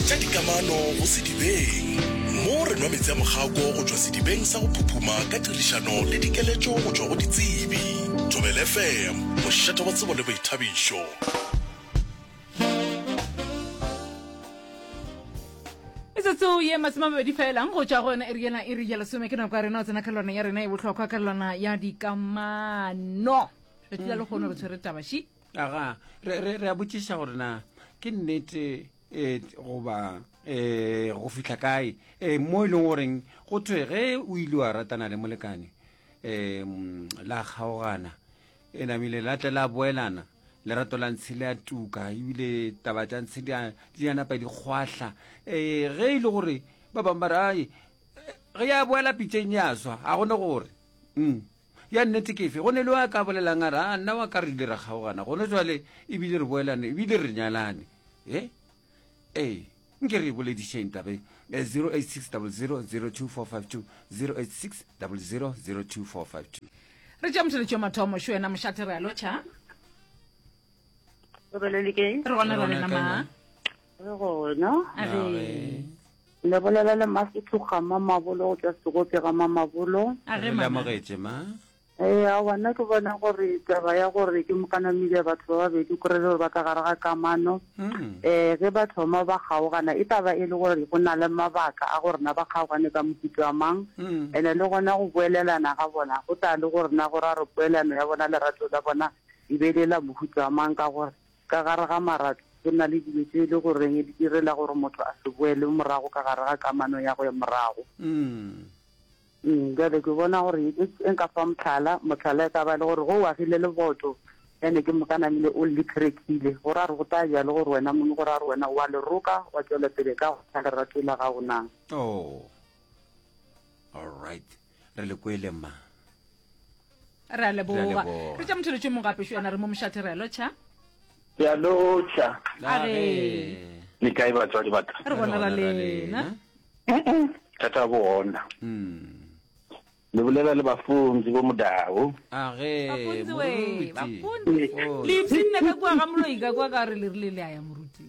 tša dikamano go Sedibeng, mo re nwa meetse a mogako go tšwa sedibeng sa go phuphuma ka tirišano le dikeletšo go tšwa go ditsebi. Thobel FM, mošate wa tsebo le boithabišo. metsotso ye masome a mabedi felang go tšwa go yona iri yena iri ya lesome ke nako ya rena o tsena kgalelwana ya rena e bohlokwa kgalelwana ya dikamano tšatši la lekgono re tshwere tabaši aga re, re, re a botšiša gore na ke nnete um goba um go fitlha kae um mo e leng goreng go thwe ge o ile wa ratana le molekane um la kgaogana e namile la tle la boelana lerato la ntshe le a tuka ebile taba tša ntshe di ya napa dikgwahla um ge e le gore ba bangwe ba re ae ge ya boela pitšeng ya swa ga gone gore um Ya nnete ke efe? Go ne le yo a ka bolelang a re, A nna wa ka re ile ra kgaogana, gone jwale e bile re boelane, e bile re nyalane. Ee, ee, nke re e boledišeng taba e. 086 00 02452, 086 00 02452. Re tšea motheletši wa mathomo, šo wena mošate re a lotšha. Re gona Re ra gona lena kae, ma. ma? Re gona. A re. Le bolela le masetloga ma mabolo go tla segope ga ma mabolo. A re mama. Lamogetše ma. Ee, a bona ke bona gore taba ya gore ke mokanamile batho ba babedi kore le gore ba ka gare ga kamano um ge ba thoma ba kgaogana e taba e le gore go na le mabaka a go rena ba kgaogane ka mohuto wa mang um ene le gona go boelelana ga bona go tla le go rena gore a re poelano ya bona lerato la bona e be le la mohuto wa mang ka gore Ka gare ga marato, go na le dilo tše e le goreng di direla gore motho a se boele morago ka gare ga kamano ya go ya morago. Umm, bjale ke bona gore e, e nka fa mohlala, mohlala e ka ba le gore ge o agile leboto, bjale ke moka namile o le krekile, go ra gore go tla ja le gore wena mong, go ra gore wena o a le roka, wa tšwela pele ka go lerato la gago na? Oh, all right. re le kwele ma re a leboga re tša mothelotšo mong gape šona re mo mošathe re alo tšha re alo tšha le kae batswadi ba ka re bona ra lena thata go ona hmm. le bolela le bafunzi bo modao age moruti le ipsinne ka kwa ga moloi ka kwa ka re le rile le a ya moruti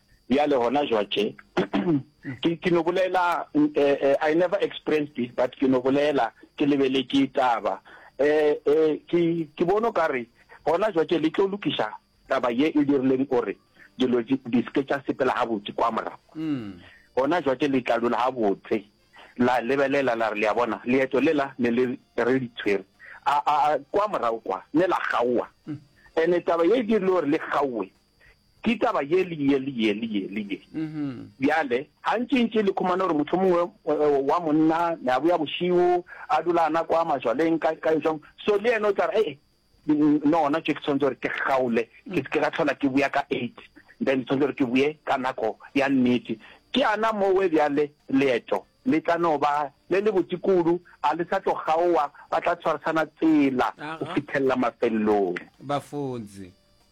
Bjale gona jwatše, ke, ke no bolela, uh, I never expressed it, but ke no bolela, ke lebeletše taba. Eh, eh, ke, ke bono ka re, gona jwatše le tlo lokiša taba ye e dirileng gore dilo di, di seke tša sepela gabotse kwa morago. Mm. Gona jwatše le tla dula gabotse, la lebelela la re le a bona, leeto lela ne le re di tshwere. A, a, a, kwa morago kwa, ne la kgaowa. Mm. Ene taba ye e dirile gore le kgaowe, ke taba ye le ye le ye le ye le ye bjale gantši ntši le khumana gore motho mongwe eh, wa monna ne a boya bošigo a dula a nako a majwaleng ka ka jong so le ene o tla re e nona tše ke tshwanetse gore ke kgaole ke se ke ga tlhola ke boya ka eight then tshwanetse gore ke boye ka nako ya nnete ke ana mowe bjale leeto le tla no ba le le botse kudu a le sa tlo kgaowa ba tla tshwarisana tsela go fithelela mafelelong bafunzi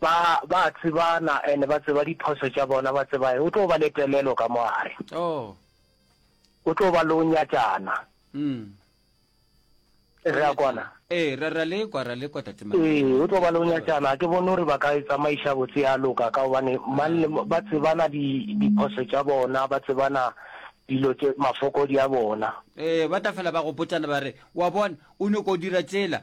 Ba, ba a tsebana, and ba tseba diphoso tša bona, ba tseba eng. O tlo ba le telelo ka mo gare. Oh. O tlo ba lo nyatšana. Mm. Re a kwana? Ee, ra, ra le kwa, ra le kwa, Tate Mangwele. Ee, o tlo ba lo nyatšana. Ke bone gore ba ka e tsamaiša botse ya loka, ka gobane mang le, ba tsebana di, diphoso tša bona, ba tsebana dilo tše, mafokodi a bona. Ee, ba tla fela ba gopotšana ba re, Wa bona, o nyoko dira tšela.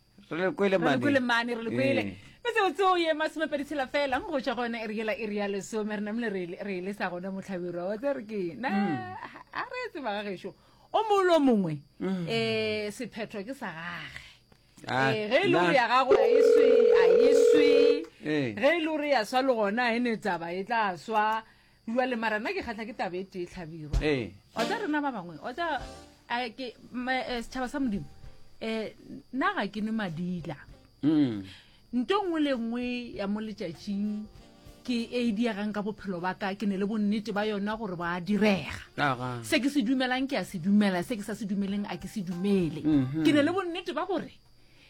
re le kwele re le kwele mane re le kwele eh. metseotseo ye masomepedi tshela fela go ja gone e re yela e re ya lesome re namele re e lesa gone motlhabirwa wa tse re ke na mm. a re etse baga gešo o molo mongwe um sephetho ke sa gage ah, eh, ge e le gore ya gago a eswe a eswe ge e le gore ya swa le gona e ne tsaba e tla swa Bjale mara nna ke kgatlha ke taba e tee tlhabirwa ee. o tsa rena ba bangwe o tsa eh, ke eh, setšhaba sa modimo um nna ga ke nwe madila mm. nto nngwe le nngwe ya mo letšatšing ke e diegang ka bophelo ba ka ke ne le bonnete ba yona gore ba direga se ke se dumelang ke a se dumela se ke sa se dumeleng a ke se dumele mhm. ke ne le bonnete ba gore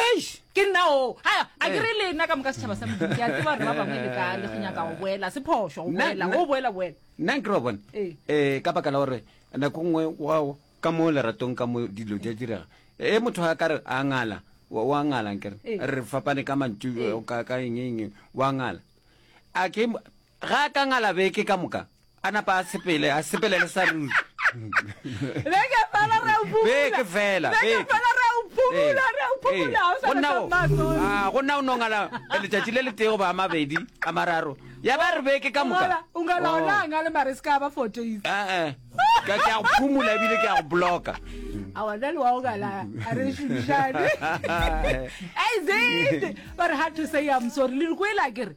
eish ke nna oo a a ke re le nna ka moka setšhaba sa modimo ke a tseba gore ba bangwe le ka le go nyaka go boela se phošo go Nna- boela nna- go boela boela nna ke re wa bone Ee. um ka baka la gore nako nngwe wa ka mo leratong ka mo dilo di a direga e motho a ka re a ngala wa wa ngalang kere Ee. re fapane ka mantšu Ee. eh, ka ka eng eng wa ngala a ke Ga a ka ngala beke ka moka, a napa a sepele, a sepele le Saruri. Beke fela re a o phomola. Beke fela, beke. Beke fela re a o phomola, re a o phomola, ga o sa na maso. Ah, go nna o no ngala letšatši le le tee goba a mabedi, a mararo. Ya ba re beke ka moka. O ngala ona oh. a ngale mare se ka ba four days. Eh, eh. Ke a go phomola ebile ke a go bloka. A wa nna le wa o ngala, a re šomišane. Hey, Zid! But hard to say I'm sorry. Le re kwele a kere.